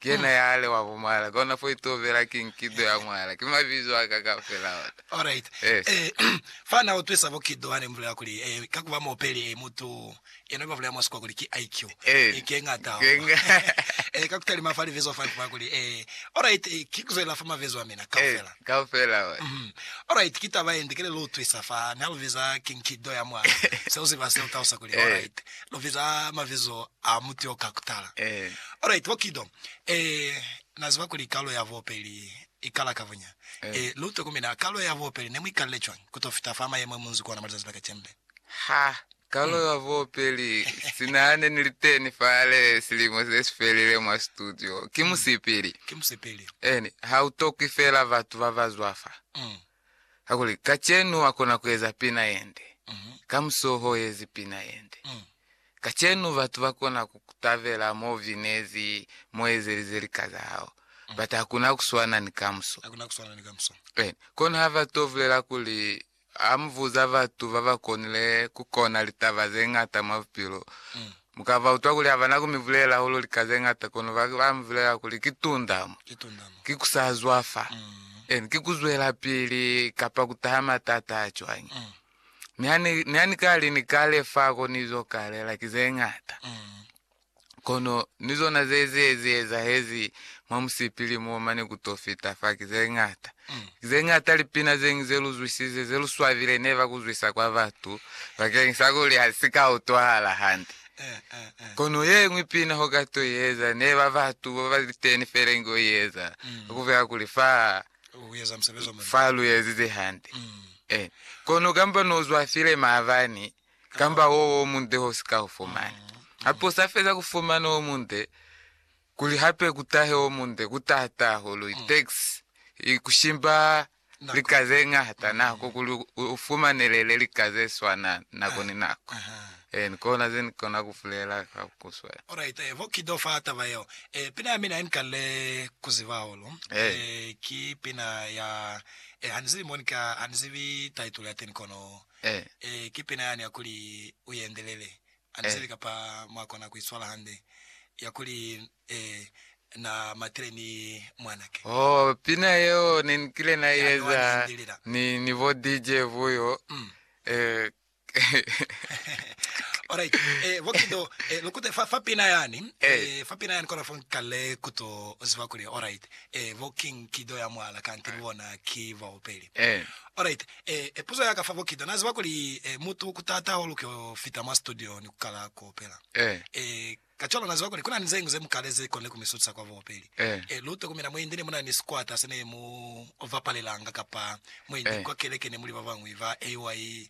Ki yena ya ale wa bumala. Kona fo itobela ki nkido ya mwala. Ki mabizo a ka kaufela ona. Alright. Yes. Eh, fa na utwisa bo kido hane mubulela kuli, eh, ka kuba muopeli, eh, mutu yena ba bulela mwa sikuwa kuli ki IQ. Eh. Eh, ke ngata Ke hahulu. nga- Eh, ka kutalima fa libizo fa kuba kuli, eh, alright, eh, ki kuzwelela fa mabizo a mina Eh, kaufela. kaufela ona. Mhm. Alright, ki taba yende kile lu utwisa fa ni ha lu biza ki nkido ya mwala. Se u ziba se u talusa kuli, Eh. alright, lu biza mabizo a mutu yo ka kutala. Alright, bo Kido, eh, na ziba kuli kalo ya bobeli i kala ka bunya. Eh, lu tokomele, a kalo ya bobeli ne mu ikalile cwañi ku to fita fa mayemo e mu nzi ku ona mwa lizazi la kacembe? Ha, kalo ya bobeli, sina ne ni li teni fale silimo se si felile mwa situdio, ki musipili. Ki musipili. Eni, ha u tokwi fela batu ba ba zwa fa. Kakuli kacenu wakona kueza pina yende, kamusi uhoezi pina yende. Kacenu batu bakona kukutabela mouvinezi, mouezelize lika zahao, but hakuna kuswana ni kamuso. Hakuna kuswana ni kamuso. Ee, kono habato bulela kuli hamubuza batu babakonile kukona litaba zeñata mwa bupilo, Mu ka ba utwa kuli ha ba na ku mi bulela hahulu lika ze ñata, kono ba ba mi bulela kuli ki tundamo, ki ku sa zwafa, en, ki ku zwelapili kapa ku taha matata a cwañi. Mi ha ni, ni ha ni ka li ni ka le fa ko ni zo kalela, ki ze ñata. Kono ni zona ze ze, ze ezahezi mwa musipili mo mane ku to fita fa ki ze ñata. Ki ze ñata lipina ze ñwi ze lu zwisize, ze lu swabile ne ba ku zwisa kwa batu bakeñisa kuli ha li si ka utwahala hande. Kono ye ñwi pina ho ka to i eza, ne ba batu ba ba li teni fela inge u i eza ka ku beka kuli fa fa lu ezize hande. Eh, kono kamba no zwafile maabani, kamba wo wo munde ho si ka u fumana. Hape u sa feza ku fumana wo munde, Kuli hape ku tahe o munde ku taha taho luli tax i ku shimba lika ze ñata nako kuli u fumanelele lika ze swana nako ni nako. Ee, ni kona ze ni kona ku bulela ka ku swana. Alright, ee, bo kido fa taba yeo. Ee, pina ya mina ye ni kalile ku ziba hahulu, Ee. ee, ki pina ya, ee, ha ni zibi mo ni ka, ha ni zibi title ya teni kono, Ee. ee, ki pina yani ya kuli, U Endelele. Aliseli kapa mwa kona ku iswala hande ya kuli Na matile ni mwanake. Oh, pina yeo ne ni kile na i eza ni, ni bo DJ Vuyo. Mm. Eh. Alright. Eh, bo Kido, eh, lukute fa, fa pina yani. Eh. Eh, fa pina yani kona fo nkale kuto ziba kuli, alright. Eh, bo King Kido ya mwala kanti Eh. bona ki baopeli. Eh. Alright. E, puzo ya ka fa bokita. Na ziba kuli, e, mutu ku tata hahulu ku yo fita mwa situdio ni ku kala ku opela. E, e, kacwalo na ziba kuli ku na ni ze ñwi ze mu kale ze koni ku mi sutisa kwa buopeli. E, e, lu tokomela mwa India ne mu na ni sikwata se ne mu bapalelanga, kapa mwa India, kwa keleke ne mu li ba bañwi ba AY,